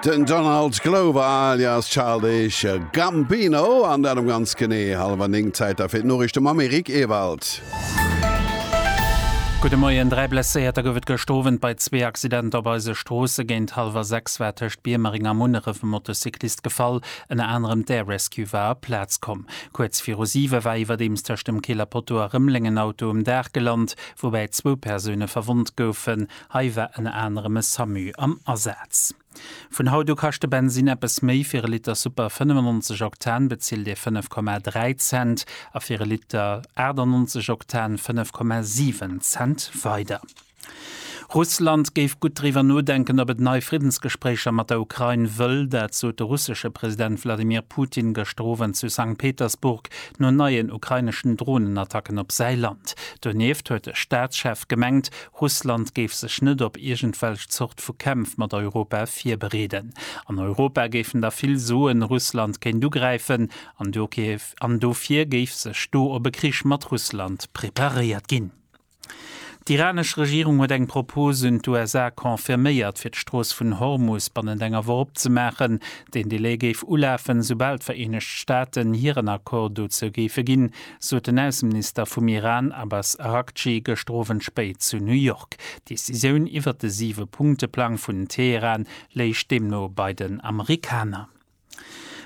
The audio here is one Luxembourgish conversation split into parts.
Den Donald Glover alias Childish Gambino an dat um ganz genee hallwer 9 Zäiter fir d'Noriichte mam Eric Ewald. Gudde Moien. Dräi Blesséierter gouf et gëscht Owend bei zwee Accidenter op eise Stroosse. Géint hallwer 6 war tëscht Biermering a Munneref e Motocyclist gefall. Ënner anerem d'Air Rescue war op d'Plaz komm. Kuerz viru 7 war iwwerdeems tëscht dem Kieler Poteau a Rëmleng en Auto um Daach gelant, woubäi zwou Persoune verwonnt goufen. Hei war ënner anerem e Samu am Asaz. Vun haut u kascht de Bensinn eppes méi, fir e Liter Super 95 Oktan bezilt Dir 5,3 Cent a fir e Liter 98 Oktan 5,7 Cent weider. Russland géif gutt driwwer nodenken, ob et nei Friddensgespréicher mat der Ukrain wëll. Dat sot de russesche President Wladimir Putin gëschter Owend zu Sankt Petersburg no neien ukraineschen Dronenattacken op säi Land. Donieft huet de Staatschef gemengt, Russland géif sech net op iergendwelch Zort vu Kämpf mat Europa virbereeden. An Europa géifen da vill soen, Russland kéint ugräifen an dofir géif sech do op e Krich mat Russland preparéiert ginn. D'iranesch Regierung huet eng Propos un d'USA confirméiert, fir d'Strooss vun Hormus bannent enger Woch opzemaachen. Deen Delai géif ulafen, soubal d'Vereenegt Staaten hiren Accord dozou géife ginn. sot den Ausseminister vum Iran Abbas Araghchi gëschter Owend spéit zu New York. D'Decisioun iwwert de Siwe-Punkte-Plang vun Teheran léich deemno bei den Amerikaner.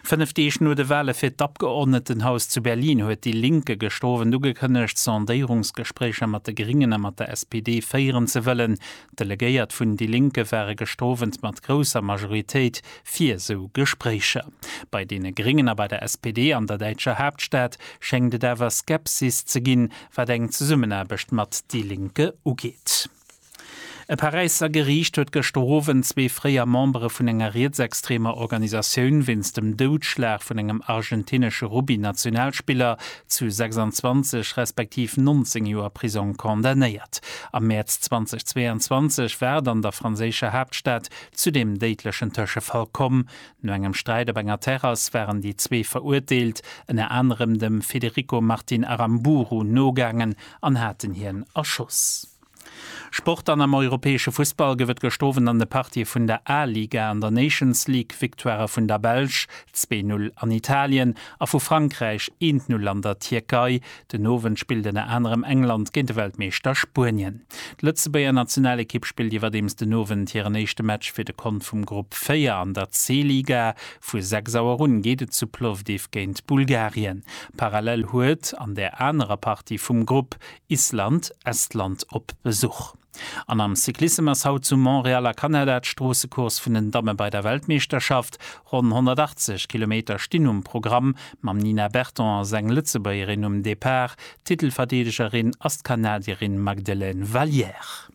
Fënnef Deeg no de Wale fir d'Abgeordnetenhaus zu Berlin huet déi Linke gëschter Owend ugekënnegt, Sondéierungsgespréicher mat de Gringen a mat der SPD féieren ze wëllen. D'Delegéiert vun déi Linke ware gëschter Owend mat grousser Majoritéit fir esou Gespréicher. Bei deene Gréngen a bei der SPD an der däitscher Haaptstad schéngt et awer Skepsis ze ginn, wat eng Zesummenaarbecht mat déi Linke ugeet. E Paräisser Geriicht huet gëschter Owend zwee fréier Membere vun enger rietsextremer Organisatioun wéinst dem Doudschlag vun engem argentinesche Rugby-Nationalspiller zu 26 respektiv 19 Joer Prisong condamnéiert. Am Mäerz 2022 war et an der franséischer Haaptstad zu deem déidlechen Tëschefall komm. No engem Sträit op enger Terrass waren déi zwee Verurteelt ënner anerem dem Federico Martin Aramburu nogaangen an haten hien erschoss. Sport An am europäesche Fussball gouf et gestowen an de Partië vun der A-Liga an der Nations League, Victoirë vun der Belsch, 2, 0 an Italien, a vu Frankräich, 1, 0 an der Tierkei. Den Owend spillt ënner anerem England géint de Weltmeeschter Spuenien. D'Lëtzebuerger Nationalekipp spillt iwwerdeems den Owend hiren éischte Match fir de Kont vum Grupp 4 an der C-Liga. Vu 6 Auer un geet et zu Plovdiv géint Bulgarien. Parallel huet an där anerer Partie vum Grupp Island, Estland, op Besuch. An am Cyclissem ass haut zu Montréal a Kanada d'Stroossecourse vun den Damme bei der Weltmeeschterschaft. Ronn 180 Kilometer stinn um Programm, mam Nina Berton als eng Lëtzebuergerin um Depart. Titelverdeedegerin ass d'Kanadierin Magdelaine Valliere.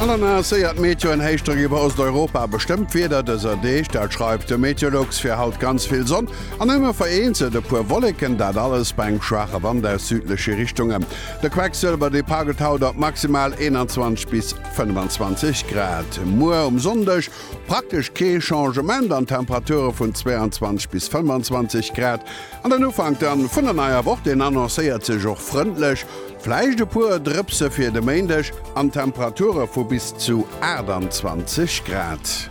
An dann annoncéiert d'Meteo en Héichdrock iwwer Osteuropa. Bestëmmt Wieder dëser Deeg, dat schreift de Meteolux. Fir haut ganz vill Sonn an ëmmer vereenzelt e puer Wolleken, dat alles bei engem schwaache Wand aus südleche Richtunge. De Quecksëlwer, dee paggelt haut op maximal 21 bis 25 Grad. Muer um Sonndeg praktesch kee Changement an d'Temperature vun 22 bis 25 Grad. An den Ufank dann vun der neier Woch, deen annoncéiert sech och frëndlech. Vläicht e puer Drëpse fir de Méindeg an Temperature vu bis zu 28 Grad.